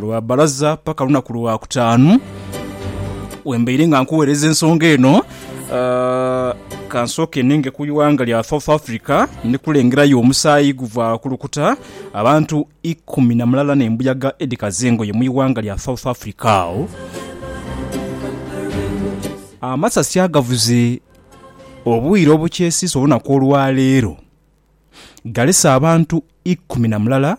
Lwa balaza paka lunaku lwa kutaanu wembaire nga nkuwereza ensonga eno uh, kansooke ninge ku iwanga lya South Africa ndikulengerayo omusaayi guva kulukuta abantu ikumi na mulala nembuyaga edikaza engoye mu iwanga lya South Africa awo amasasi agavuze obwire obukyesiisa olunaku olwaleero galese abantu ikumi na mulala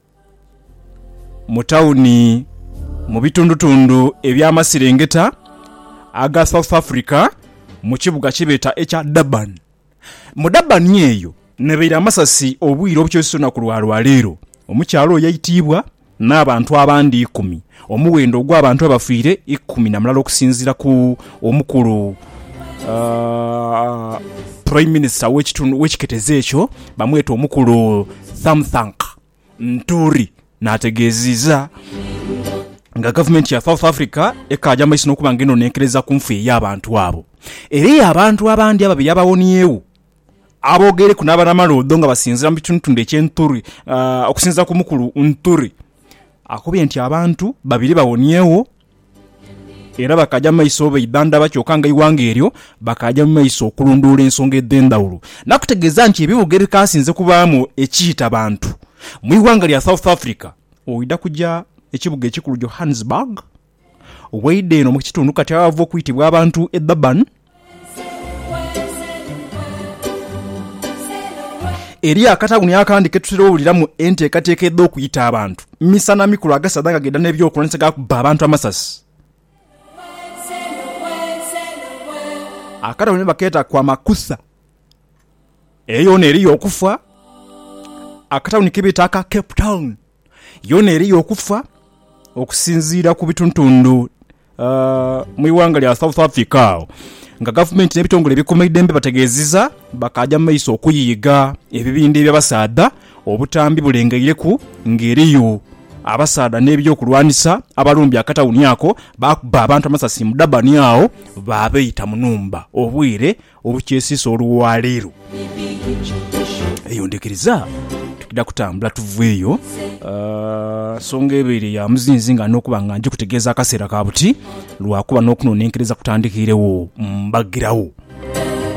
Mu tawuni mu bitundutundu eby'amaserengeta aga South Africa mu kibuga kye beeta ekya Durban. Mu Durban eyo nabaire amasasi obwire obukyosisa olunaku lwa lwaleero. Omukyala oyo yaitiibwa n'abantu abandi ikumi Omuwendo ogw'abantu abafiire ikumi na mulala okusinziira ku omukulu Prime Minister w'ekiketezo ekyo bamweta omukulu Thamthanq Nturi n'ategeeziza nga gavumenti ya South Africa ekaaja maiso n'okuba nga enonenkereza ku nfu ey'abantu abo era ey'abantu abandi ababiri abawoniegho. Aboogeireku n'abanamaloodho nga basinziira mu bitundutundu eky'e Nturi okusinziira ku mukulu Nturi. Akobye nti abantu babiri bawoniegho era bakaaja mu maiso baidhandhaba kyoka nga eighanga eryo bakaaja mu maiso okulondoola ensonga edh'endhaghulo n'akutegeeza nti ebibuga ebikaasinze kubaamu ekiita bantu mu ighanga lya South Africa oidha kuja ekibuga ekikulu Johannesburg Waidha eno mu kitundu kati aghava okwitibwa abantu e Durban, eriyo akatauni akandi ke tutera owuliramu enteekateeka edh'okuyita abantu misana mikulu agasaadha nga gaidha n'ebyokulwanisa ga kubba abantu amasasi. Akatauni bakeeta Kwamakutha. Eyo yoona eriyo okufa. Akatauni ke beeta aka Cape Town. Yoona eriyo okufa okusinziira ku bitundutundu mu ighanga lya South Africa agho nga gavumenti n'ebitongole ebikuuma eidembe bategeezizza bakaaja mu maiso okuyiiga ebibindha eby'abasaadha obutambi bulengeireku ng'eriyo abasaadha n'ebyokulwanisa abalumbye akatawuni ako baakubba abantu amasasi mu Durban agho baabaita mu nhumba obwire Olukyesiisa olwa leero, eyo ndhikiriza twidha kutambula tuveeyo. Nsonga ebaire ya muzinzi nga ndina okuba nga njikutegeeza akaseera ka buti, lwakuba n'okunonenkereza kutandikiiregho mbagiragho.